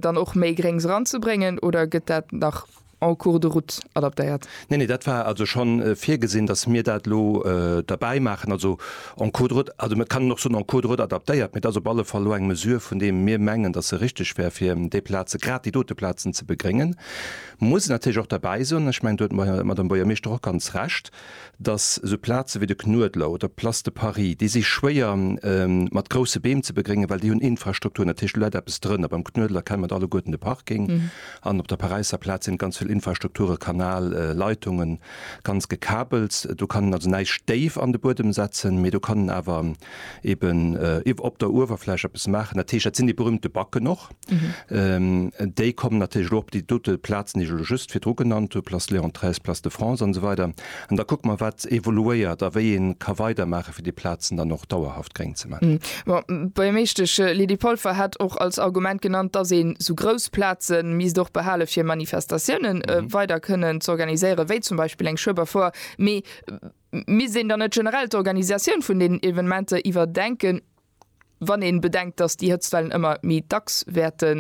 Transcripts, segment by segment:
dann och méi Gréngs eranzebréngen oder gëtt dat nach en cours de route adaptéiert? Nee, nee, dat war also schonn virgesinn, datt mir dat elo derbäi maachen, also en cours de route, also et kann een och soen en cours de route adaptéiert, mee et ass op alle Fall elo eng Mesure, vun deem mir mengen, datt se richteg wär, fir déi Plaze, grad déi dote Plazen ze begréngen. Muss een natierlech och derbäi soen, ech mengen, do huet d'Madame Bouyer-Meeschter och ganz Recht, datt esou Plaze wéi de Knuedler oder d'Place de Paris, déi si schwéier mat grousse Beem ze begréngen, well déi hunn Infrastruktur, natierlech do läit eppes drënner, beim Knuedler kennen mer et alleguerten, de Parking, an op der Paräisser Plaz sinn et ganz vill Infrastrukture, Kanal, Leitungen, ganz gekabelt. Do kann een also näischt déif an de Buedem setzen, mee do kann een awer eeben op der Uewerfläch eppes maachen. Dat heescht, dat sinn déi berühmte Backen och. Déi kommen natierlech elo op déi dote Plazen, déi ech elo just virdru genannt hunn, Place Léon xiii, Place de France an esou weider. An da kucke mer, wat evoluéiert a wéi ee ka weidermaachen, fir déi Plazen dann och dauerhaft gréng ze maachen. Bon, beim éischte, d'Je Lydie Polfer hat och als Argument genannt, dass een esou grouss Plaze misst och behale fir Manifestatioune weider kënnen z'organiséieren, wéi zum Beispill eng Schueberfoire. Mee misst een dann net generell d'Organisatioun vun deenen Evenementer iwwerdenken? wann ee bedenkt, dass déi Hëtztwellen ëmmer méi dacks wäerte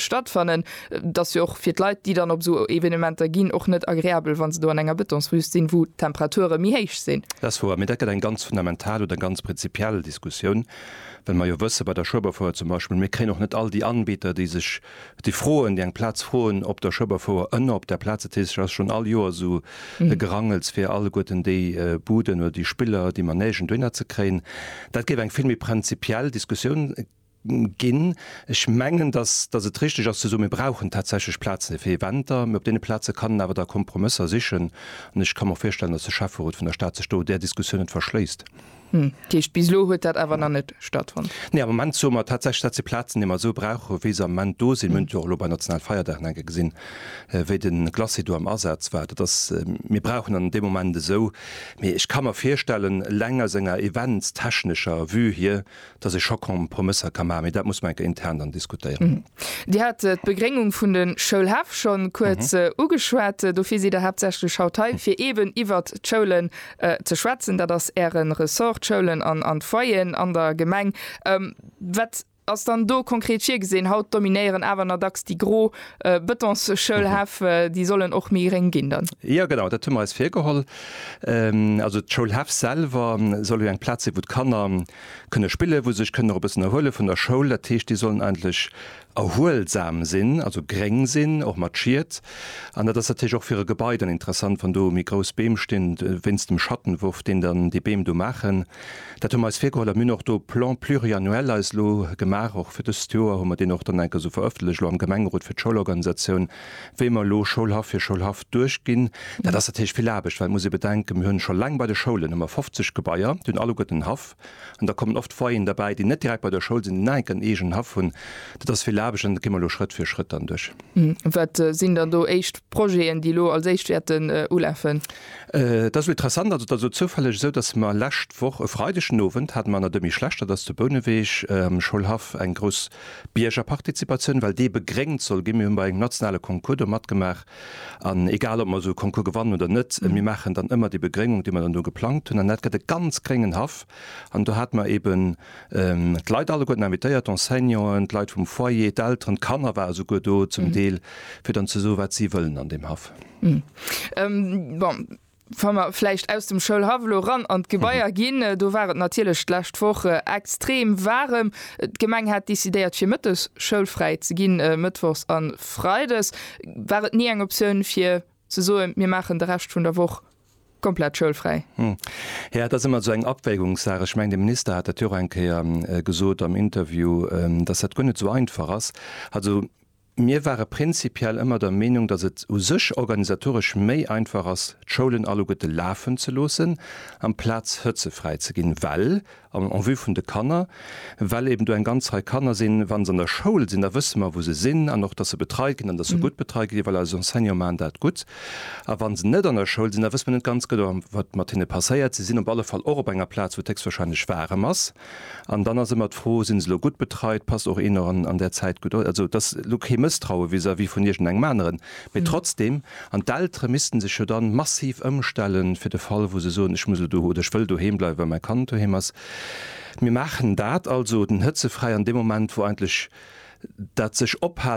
stattfannen, et ass jo och fir d'Leit, déi dann op esou Evenementer ginn, och net agreabel, wa se do an enger Betonswüst sinn, wou d'Temperature méi héich sinn. Dat ass wouer, mee dat gëtt eng ganz fundamental oder ganz prinzipiell Diskussioun, well mer jo wëssen, bei der Schueberfouer zum Beispill, mir kréien och net all déi Anbieter, déi sech Déi Froen, déi eng Plaz froen op der Schëbberfouer ënner op där Plaz, dat heescht, et ass schonn all Joer esou e Gerangels, fir alleguerten déi Buden oder déi Spiller, déi man néigen, dohinner ze kréien. Dat géif eng vill méi prinzipiell Diskussioun ginn. Ech mengen, datt, datt et richteg ass ze soen, mir brauchen tatsächlech Plaze fir Eventer, mee op deene Plaze kann een awer da Kompromësser sichen. An ech ka mer och virstellen, datt de Schäfferot vun der Stad sech do där Diskussioun net verschléisst. Hm, dat heescht, bis elo huet dat awer nach net stattfonnt? Nee, am Moment soe mer tatsächlech, dat si Plazen, déi mer esou brauchen, wéi se am Moment do sinn. Mir hunn et jo och elo bei nationalen Feierdagen enke gesinn, wéi de Glacis do am Asaz war. Dat ass, mir brauchen an deem Moment esou. Mee ech ka mer virstellen, eleng aus enger eventstechnescher Vue hier, Et ass ee Choc en promessa ca. Mä dat muss mer enker intern dann diskutéieren. Dir hat d'Begréngung vun de Schoulhäff scho kuerz ugeschwat. Dofir sidd Der haaptsächlech haut hei, fir eeben iwwert d'Schoulen ze schwätzen. Dat ass Äre Ressort, d'Schoulen an d'Foyeren an der Gemeng. Wat ass dann do konkret virgesinn? Haut dominéieren awer nach dacks déi gro Bëtonsschoulhäff. Déi sollen och méi gréng ginn dann? Jo, genau dat hu mer eis virgeholl. Also d'Schoulhäff selwer soll jo eng Plaz sinn, wou d'Kanner kënne spillen, wou se sech kënnen och e bëssen erhuele vun der Schoul. Dat heescht, déi sollen eigentlech erhuelsam sinn, also gréng sinn, och mat Schiet. An dat ass natierlech och fir e Gebai dann interessant, wann do méi grouss Beem stinn, wéinst dem Schattenwurf, deen dann déi Beem do maachen. Dat hu mer eis virgeholl a mir hunn och do e Plan pluriannuel eis elo gemaach, och fir dëst Joer hu mer deen och dann enk esou verëffentlecht elo am Gemengerot fir d'Schoulorganisatioun, Wéi mer elo Schoulhaff fir Schoulhaff duerchginn, dat ass natierlech vill Aarbecht, well et muss ee bedenken, mir hunn scho laang bei de Schoulen hu mer 50 Gebaier, déi hunn alleguerten en Haff an da kommen oft Foyeren derbäi, déi net direkt bei der Schoul sinn, déi nach enk en eegenen Haff hunn. Dat ass vill Aarbecht an dat gi mer elo Schrëtt fir Schrëtt dann duerch. Wat sinn dann do éischt Projeten, déi elo als éischt wäerten ulafen? Et ass elo interessant, also et ass elo zoufälleg esou, datt mer lescht Woch e Freideg den Owend hate mer an der Demi Schlechter, dat ass zu Bouneweg am Schoulhaff, eng grouss Biergerpartizipatioun, well déi begréngt soll ginn. Mir hunn bei engem nationale Concours do matgemaach, an egal ob mer esou e Concours gewannen oder net, mir maachen dann ëmmer déi Begréngung, déi mer dann do geplangt hunn, an dat gëtt e ganz gréngen Haff. An do hate mer eben d'Leit alleguerten invitéiert, d'Enseignanten, d'Leit vum Foyer, d'Elteren, d'Kanner ware souguer do zum Deel, fir dann ze soe wat si wëllen an deem Haff. Bon, Wa mer vläicht aus dem Schoulhaff elo ran an d'Gebaier ginn, do war et natierlech d'lescht Woch extrem waarem. D'Gemeng hat decidéiert fir mëttes schoulfräi ze ginn, mëttwochs a freides. War et ni eng Optioun fir ze soen, mir maachen de Rescht vun der Woch komplett schoulfräi? Jo, et ass ëmmer esou eng Abwägungssaach. Ech mengen de Minister hat dat jo och eng Kéier gesot am Interview, datt dat guer net esou einfach ass. Also. Mir ware prinzipiell ëmmer der Meenung, datt et u sech organisatoresch méi einfach ass, d'Schoulen alleguerte lafen ze loossen, amplaz hëtzefräi ze ginn, well, an en vue vun de Kanner, well eben do eng ganz Rei Kanner sinn, wa se an der Schoul sinn, da wësse mer, wou se sinn an och, datt se betreit ginn an datt se gutt betreit ginn, well eis Enseignantë maachen dat gutt. A wa se net an der Schoul sinn, da wësse mer net ganz genau, wat mat hinne passéiert. Si sinn op alle Fall och op enger Plaz, wou et héchstwahrscheinlech waarem ass. An dann ass ëmmer d'Fro, Sinn se elo gutt betreit? Passt och een an an där Zäit gutt op? Also et ass elo kee Mësstraue vis-à-vis vun iergendengem aneren, mee trotzdeem, an d'Eltere missten sech jo da massiv ëmstellen, fir de Fall wou se soen, ech muss elo do oder ech wëll doheem bleiwen, well mäi Kand doheem ass. Mir maachen dat also, den Hëtzefräi, an deem Moment wou eigentlech dat sech ophalen,